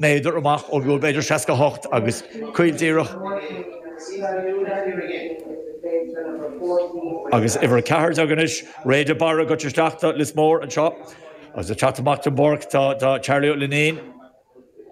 méadar amach ón gcúl b'fhéidir 68 agus caol díreach, agus uimhir 14 anois, Ray de Barra ag dul isteach do Lios Mór anseo, agus ag teacht amach den bpáirc tá Charlie Ó Luinín,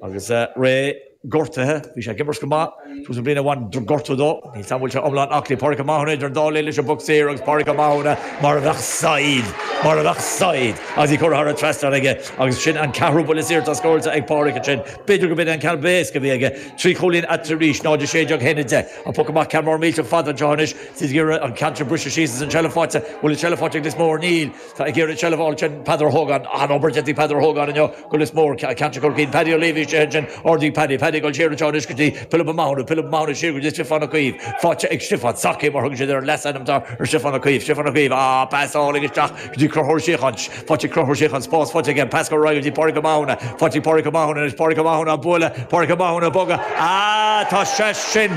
agus Ray gortaithe, bhí sé ag imirt go maith. Tús na bliana bhain gortú dó. Níl a fhios agam an bhfuil sé iomlán aclaí Pádraic Ó Mathúna idir an dá linn leis an bpoc saor agus Pádraic Ó Mathúna mar a bheadh saighead, mar a bheadh saighead agus í curtha thar an trasnán aige agus sin an ceathrú buille saor atá scóráilte ag Pádraic ansin. B'fhéidir gurb in é an ceann ab éasca a bhí aige. Trí chúilín eatarthu arís, 0-16 1-10. An poc amach ceann mór millteach fada anseo anois. Is iad ag iarraidh an ceann sin briseadh síos agus an tseilbh faighte. An bhfuil an tseilbh faighte ag Lios Mór. Níl. Tá ag iarraidh seilbh a fháil sin Peadar Hogan. An-obair déanta ag Peadar Hogan inniu go Lios Mór, ceantar Chorcaí. An Paddy Leavey istigh ansin, ordaigh Paddy. Paddy ag dul siar anseo anois go dtí Pilib Ó Mathúna. Pilib Ó Mathúna siar go dtí Stiofán Ó Caoimh. Faighte ag Stiofán. Saki mar thugann siad air, leasainm atá ar Stiofán Ó Caoimh. Stiofán Ó Caoimh, á, pasáil isteach go dtí Conchúr Ó Síocháin. Faighte ag Conchúr Ó Síocháin, spás faighte aige. Pas go go dtí Pádraig Ó Mathúna. Faighte ag Pádraig Ó Mathúna anois. Pádraig Ó Mathúna á bualadh. Pádraig Ó Mathúna ag bogadh. Á, tá sé sin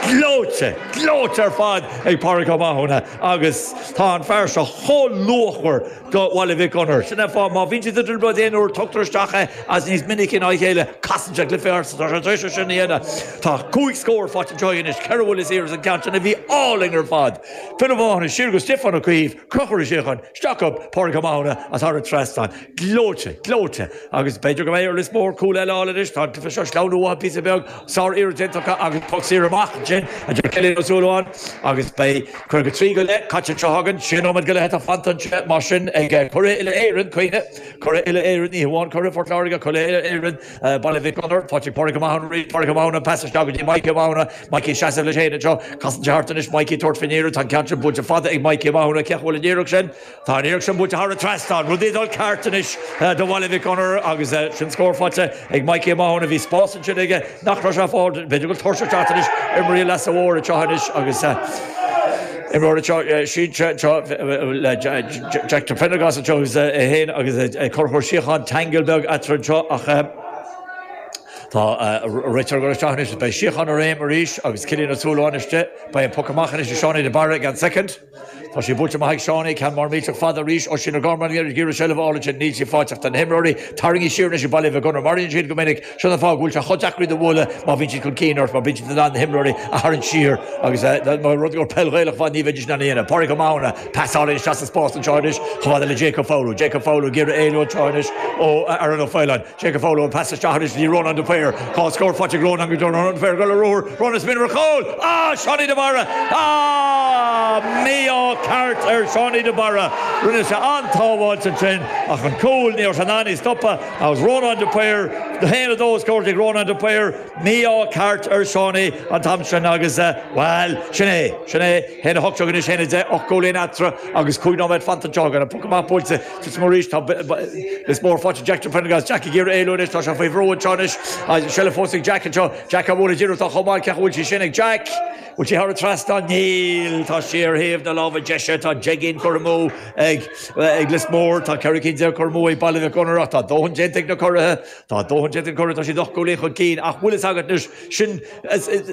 gleoite, gleoite ar fad ag Pádraig Ó Mathúna. Agus tá an fear seo chomh luachmhar do Bhaile Mhic Gonair. Sin é fáth, má bhíonn siad i dtrioblóid aon uair, tugtar isteach é, agus níos minice ná a chéile, casann sé cluiche ort. Tá sé tar éis é sin a dhéanamh. Tá cúig scór faighte anseo aige anois. Ceithre bhuille saor agus an ceann sin a bhí álainn ar fad. Pilib Ó Mathúna, siar go Stiofán Ó Caoimh, Conchúr Ó Síocháin, isteach go Pádraig Ó Mathúna, agus thar an trasnán. Gleoite, gleoite. Agus b'fhéidir go mbeidh ar Lios Mór cúl eile a fháil anois, tá sé seo ag sleamhnú uathu píosa beag, sár iarracht déanta acu agus poc saor amach ansin, a deir Cillian Ó Súilleabháin. Agus beidh caoga trí go leith caite anseo againn, sé nóiméad go leith atá fanta anseo mar sin ag Curaidh Uile Éireann, cuimhnigh, Curaidh Uile Éireann, ní hamháin Curaidh Phort Láirge, Curaidh Uile Éireann Baile Mhic Gonair, tá tigh Pádraig Ó Mathúna, rí Pádraig Ó Mathúna, pass isteach go dtí Mikey Ó Mathúna, Mikey ag seasamh leis fhéin anseo, casann sé thart anois Mikey ag tabhairt faoin iarracht, tá an ceann sin buailte fada ag Mikey Ó Mathúna, cá bhfuil an iarracht sin? Tá an iarracht sin buailte thar an trasnán. Rudaí ag dul ceart anois do Bhaile Mhic Gonair agus sin scór faighte ag Mikey Ó Mathúna. Bhí spás ansin aige nach raibh sé ag fáil. B'fhéidir go bhfuil tuirse ag teacht anois ar imreoirí Lios Mór anseo anois agus imreoir anseo sínte anseo le Jack de Prendergast anseo agus é féin agus Conchúr Ó Síocháin ceangal beag eatarthu anseo ach tá an réiteoir ag dul isteach anois. Beidh síocháin i réim arís agus Cillian Ó Súilleabháin istigh. Beidh an poc amach anois ag Seánie de Barra ag an soicind. Tá sí buailte amach ag Seánie, ceann mór millteach fada arís. Oisín Ó Gormáin ag iarraidh seilbh a fháil ansin. Níl sí faighte ach tá na himreoirí tarraingthe siar anois ag Baile Mhic Gonair. Mar a bhíonn siad go minic. Sin an fáth go bhfuil sé chomh deacair iad a bhualadh má bhíonn siad chun cinn ort mar bíonn siad in ann na himreoirí a tharraingt siar agus mar rud gur peil Ghaelach mhaith ní bheidís in ann a dhéanamh. Pádraig Ó Mathúna, pasáil isteach sa spás anseo anois chomh fada le Jake Foley. Jake Foley ag iarraidh éalú anseo anois ó Aaron Ó Faoláin. Cé go bhfoghlaim an pas isteach anois, bhí Rónán de Paor, tá scór faighte ag Rónán go deo, Rónán de Paor, ag dul ar ruathar, Rónán ag smaoineamh ar chúl, Á! Seánie de Barra! Á! Mí-ádh ceart ar Seánie de Barra. Rinne sé an-tsábháilt ansin, ach an cúl, ní raibh sé in ann í a stopadh, agus Rónán de Paor, haon a dó scóráilte ag Rónán de Paor, mí-ádh ceart ar Seánie an t-am sin agus, bhail, sin é, sin é, haon a hocht déag anois, haon a deich, ocht gcúilín eatarthu agus cúig nóiméad fanta anseo, againn, an poc amach buailte. Lios Mór anois, tá, Lios Mór, faighte ag Jack de Prendergast, Jack ag iarraidh éalú anois, tá sé faoi bhrú anseo anois, seilbh fós ag Jack anseo, Jack á bhualadh díreach dá chomán, cé bhfuil sí sin ag Jack? Bhfuil sí thar an trasnán? Níl! Tá sí ar thaobh na láimhe deise, tá deich gcinn curtha amú ag, ag Lios Mór, tá ceithre cinn déag curtha amú ag Baile Mhic Gonair ach tá dóthain déanta ag na curaithe, tá dóthain déanta ag na curaithe, tá siad ocht gcúilín chun cinn ach bhfuil fhios agat anois, sin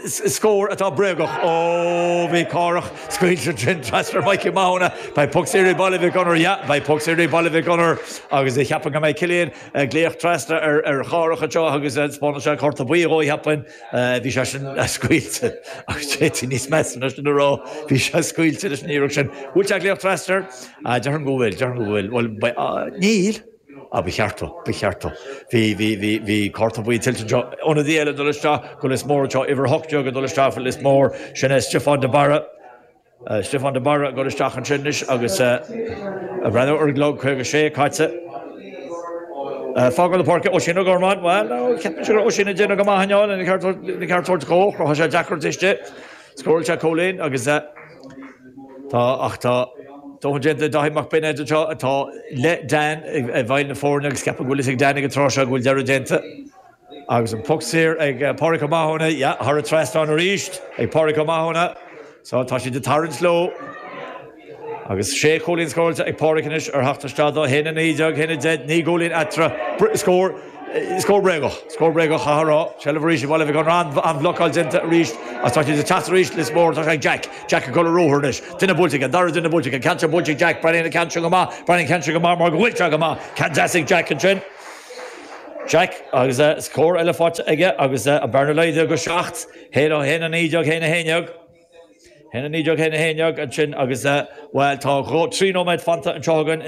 scór atá bréagach. Ó, bhí Cárthach scaoilte ansin trasna ar Mhikey Mathúna. Beidh puc saor ag Baile Mhic Gonair, yeah, beidh puc saor ag Baile Mhic Gonair. Agus cheapfainn go mbeidh Cillian ag glaoch trasna ar an Chárthach anseo agus taispeánann sé cárta buí dhó, cheapfainn. Bhí sé sin scaoilte agus d'fhéadfaí níos measa ná sin a rá. Bhí sé scaoilte leis an iarraidh sin. An bhfuil sé ag glaoch trasna air? Déarfainn go bhfuil, déarfainn go bhfuil. Bhuel, níl. Ah, ba cheart dó, ba cheart dó. Bhí, bhí, bhí, bhí cárta buí tuillte anseo. Ionadaí eile ag dul isteach go Lios Mór anseo, uimhir a hocht déag ag dul isteach go Lios Mór, sin é Stiofán de Barra. Stiofán de Barra ag dul isteach ansin anois agus breathnú ar an gclog, caoga sé caite. Fágáil na páirce, Oisín Ó Gormáin, bhuel, ceapaimse go raibh Oisín ag déanamh go maith inniu, lena cheart a thabhairt dhó, chruthaigh sé deacracht istigh, scóráil sé cúilín agus, Tá, ach tá. Dóthain déanta ag Dáithí Mac Binéid anseo atá le Dan i bhfeighil na foirne agus ceapaim go bhfuil fhios ag Dan ag an tráth seo go bhfuil deireadh déanta agus an poc saor ag Pádraic Ó Mathúna, yeah, thar an trasnán arís ag Pádraic Ó Mathúna. So tá siad ag tarraingt leo agus sé chúilín scóráilte ag Pádraic anois ar theacht isteach dó, haon a naoi déag, haon a deich, naoi gcúilín eatarthu, scór. Scór bréagach. Scór bréagach a rá. Seilbh arís ag Baile Mhic Gonair. An-bhlocáil déanta arís agus tá siad ag teacht arís. Lios Mór atá ag Jack. Jack ag dul ar ruathar anois. Duine buailte aige. An dara duine buailte aige. An ceann seo buailte ag Jack. Breathnaíonn an ceann seo go maith. Breathnaíonn an ceann seo go maith mar go bhfuil sé go maith. Ceann deas ag Jack ansin. Jack agus scór eile faighte aige agus an bhearna laghdaithe go seacht. Haon a haon a naoi déag. Haon a haon dhéag. Haon a naoi déag, haon a haon déag, ansin agus, bhuel, tá dhá, trí nóiméad fanta anseo againn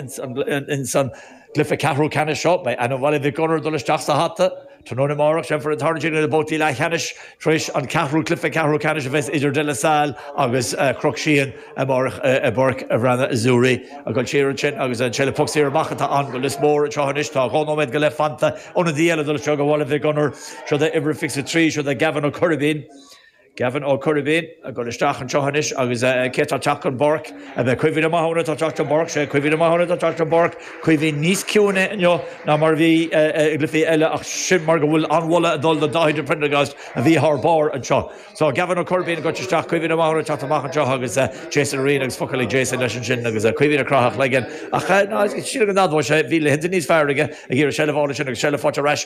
in san gcluiche ceathrú ceannais seo. Beidh ainm Bhaile Mhic Gonair ag dul isteach sa hata. Tráthnóna amárach, déanfar an tarraingt idir na babhtaí leathcheannais tar éis an ceathrú cluiche ceathrú ceannais a bheas idir De La Salle agus Cnoc Síon amárach i bPáirc an Bhreathnaigh Azzurri. Ag dul siar ansin agus an seilbh puc saor amach atá ann go Lios Mór anseo anois. Tá dhá nóiméad go leith fanta. Ionadaí eile ag dul isteach ó Bhaile Mhic Gonair. Seo'd é uimhir a fiche trí, seo'd é Gavin Ó Coirbín. Gavin Ó Coirbín ag dul isteach anseo anois agus cé atá ag teacht den bpáirc ab é Caoimhín Ó Mathúna atá ag teacht den bpáirc, sé Caoimhín Ó Mathúna atá ag teacht den bpáirc, Caoimhín níos ciúine inniu ná mar a bhí i gcluichí eile ach sin mar go bhfuil an-mholadh ag dul do Dháithí de Priondargást a bhí thar barr anseo. So Gavin Ó Coirbín ag goil isteach, Caoimhín Ó Mathúna ag teacht amach anseo agus Jason Ryan agus focail ag Jason leis ansin agus Caoimhín ag craitheadh a chloigeann ach sílim go n-admhóidh sé bhí laethanta níos fearr aige ag iarraidh seilbh a fháil ansin agus seilbh faighte ar ais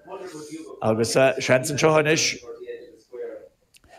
Agus seans anseo anois.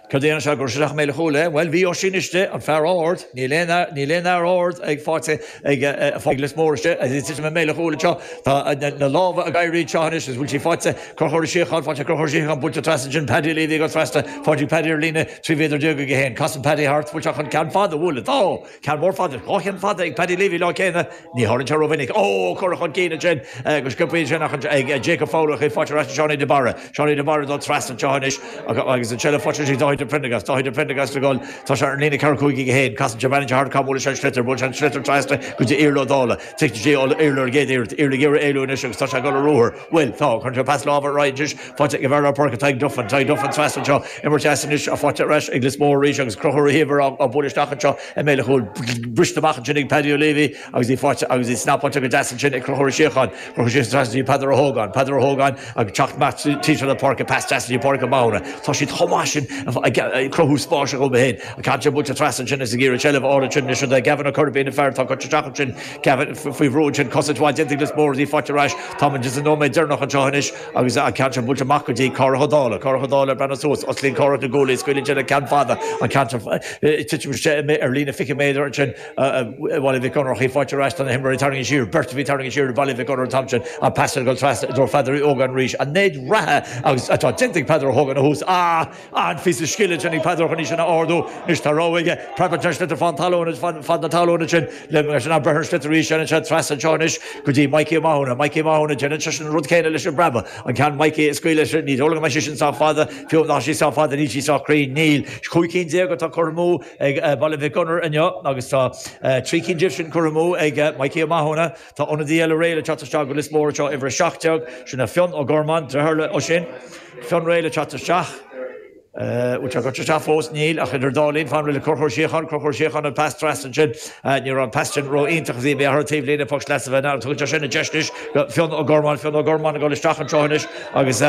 Céard a dhéanfas sé? Ag cur isteach i mbéal an chúil é? Bhuel, bhí Oisín istigh, an fear ard, níl aon fhear ard ar fáil ag Lios Mór istigh, is istigh i mbéal an chúil anseo. Tá na lámha ag éirí anseo anois agus bhfuil sí faighte, ag Conchúr Síocháin, faighte ag Conchúr Síocháin buailte trasna ansin, Paddy Leavy ag goil trasna na páirce, Paddy ar líne, 13 mhéadar aige féin, casann Paddy thart, bhfuil sé chun ceann fada, bhuel, tá! Ceann mór fada, dhá cheann fada ag Paddy Leavy lá céanna, ní tharlaíonn sé rómhinic. Ó! Cuireadh chun cinn ansin go sciobthaí ansin ach ag Jacob Fowler ach í faighte ar ais ag Seánie de Barra. Seánie de Barra ag dul trasna anseo anois agus ansin le fáilte roimh Dáithí de Prendergast. Dáithí de Prendergast ag dul, tá sé ar an líne ceathracha cúig aige féin, casann sé bean anseo thart cá bhuaileann sé an sliotar, buaileann sé an sliotar trasna go dtí Iarla Ó Dálaigh, tig go dtí Iarla ar an gcéad iarraidh, Iarla ag iarraidh éalú anois agus tá sé ag dul ar ruathar, Bhuel, tá, chuir sé pas láimhe roidis faighte ag an bhfear lár páirce Tadhg Duffin. Tadhg Duffin trasna anseo, imirt dheas anois faighte ar ais ag Lios Mór arís agus Conchúr Ó hÍomhair á bualadh isteach anseo i mbéal a chúil. Briste amach ansin ag Paddy Leavy agus í faighte agus í snappáilte go deas ansin ag Conchúr Ó Síocháin. Conchúr síos trasna go dtí Peadar Ó hÓgáin. Peadar Ó hÓgáin ag teacht amach timpeall na páirce, pas deas go dtí Pádraig Ó Mathúna. Tá siad chomh maith sin ag cruthú spáis dhóibh féin. An ceann seo buailte trasna ansin agus ag iarraidh seilbh a fháil ansin anois do Gavin Ó Coirbín, an fear atá coinneáil isteach ansin, Gavin, faoi bhrú ansin, cosaint mhaith déanta ag Lios Mór agus í faighte ar ais. Táimid ins an nóiméad deireanach anseo anois agus an ceann seo buailte amach go dtí Cárthach Ó Dálaigh. Cárthach Ó Dálaigh ag breathnú suas. Osclaíonn Cárthach na guaillí, scaoileann sé an ceann fada, an ceann seo, ag titim isteach ar líne fiche méadar ansin ag Baile Mhic Gonair ach í faighte ar ais. Tá na himreoirí tarraingthe siar, beirt a bhí tarraingthe siar ag Baile Mhic Gonair an t-am sin, an pas ard ag dul trasna i dtreo Pheadair Uí Ógáin arís. An méid reatha agus atá déanta ag Peadar Ó hÓgáin ó thús a. An-phíosa scile sin ag Peadar chun í sin a ardú. Anois tá rogha aige, preabann sé an sliotar fán talún, fad na talún ansin, le mar sin an preabann an sliotar arís, téann sé trasna anseo anois go dtí Mikey Ó Mathúna. Mikey Ó Mathúna, déanann sé sin an rud céanna leis an bpreabadh, an ceann Mikey a scaoileadh sin, ní dóigh liom go mbeidh sé sin sách fada, fiú dá mbeadh sí sách fada níl sí sách cruinn. Níl. 'Sé cúig cinn déag atá curtha amú ag Baile Mhic Gonair inniu agus tá trí cinn díobh sin curtha amú ag Mikey Ó Mathúna. Tá ionadaí eile réidh le teacht isteach do Lios Mór anseo, uimhir 17, sin é Fionn Ó Gormáin, deartháir le Oisín. Fionn réidh le teacht isteach? Bhfuil sé curtha isteach fós? Níl, ach idir an dá linn, fan réidh le Conchúr Síocháin, Conchúr Síocháin an pas trasna ansin, ní raibh an pas sin ró-iontach, í imithe thar an taobhlíne, puc sleasa a bheith ann, tugann sé sin an deis anois do Fionn Ó Gormáin, Fionn Ó Gormáin ag dul isteach anseo anois agus.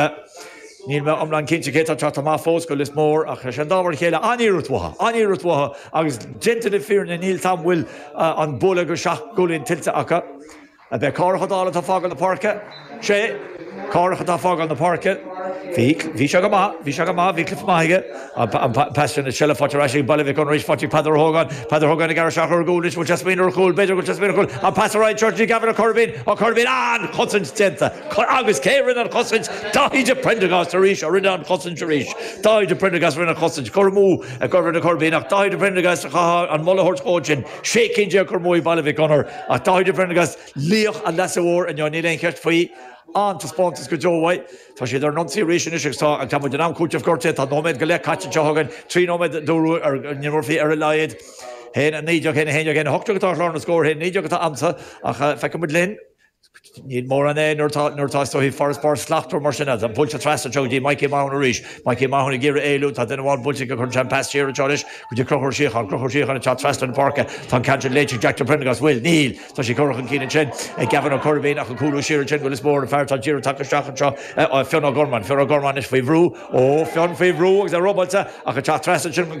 Níl mé iomlán cinnte cé tá teacht amach fós do Lios Mór, ach sé an dá mhar a chéile, an-iarracht mhaith, an-iarracht mhaith agus déanta na fírinne níl a fhios a'm an bhfuil an bualadh de sheacht gcúilín tuillte acu. Ab é Cárthach Ó Dálaigh atá ag fágáil na páirce. Sé, Cárthach atá ag fágáil na páirce. Bhí, bhí sé go maith, bhí sé go maith, bhí cluiche maith aige. Paistear na tSile, faighte ar ais ag Baile Mhic Gonair, faighte ag Peadar Ó hÓgáin, Peadar Hogan ag aithris ar thóir cúil, anois an bhfuil sé ag smaoineamh ar chúl, b'fhéidir go bhfuil sé ag smaoineamh ar chúl, an pas trasna isteach, go dtí Gavin Ó Corbáin, Ó Corbáin, ah, an chosaint déanta, agus cé a rinne an chosaint, Dáithí de Prendergast arís a rinne an chosaint arís, Dáithí de Prendergast a rinne an chosaint, curtha amú ag Gavin Ó Corbáin, ach Dáithí de Prendergast caithfear an moladh a thabhairt dhó ansin, sé cinn déag curtha amú ag Baile Mhic Gonair, ach Dáithí de Prendergast, laoch an Leasa Mhóir, inniu, níl aon cheist faoi, an-taispeántas go deo uaidh. Tá siad ar an ionsaí arís anois agus tá muid in am cúitimh gortaithe. Tá nóiméad go leith caite anseo againn, trí nóiméad a d'fhógair Neil Murphy ar a laghad. Haon 19, Haon 11, Haon 18 atá ar chlár na scór, Haon 19 atá agamsa ach feicfidh muid linn. Níl mórán air nuair atá is dóigh farasbarr slachtmhar mar sin ann. Tá buailte trasna anseo go dtí Mikey Mahony arís. Mikey Mahony ag iarraidh éalú, tá duine amháin buailte aige, cuireann sé an pas siar anseo anois go dtí Conchúr Ó Síocháin. Conchúr Ó Síocháin ag teacht trasna an pháirce, tá an ceann sin léite ag Jack de Priondargás, an bhfuil? Níl. Tá sé curtha chun cinn ansin ag Gavin Ó Corbáin ach ag cúlú siar ansin, ón Lios Mór an fear atá díreach tagtha isteach anseo, Fionn Ó Gormáin. Fionn Ó Gormáin anois faoi bhrú, ó Fionn faoi bhrú agus é robáilte ach ag teacht trasna ansin chun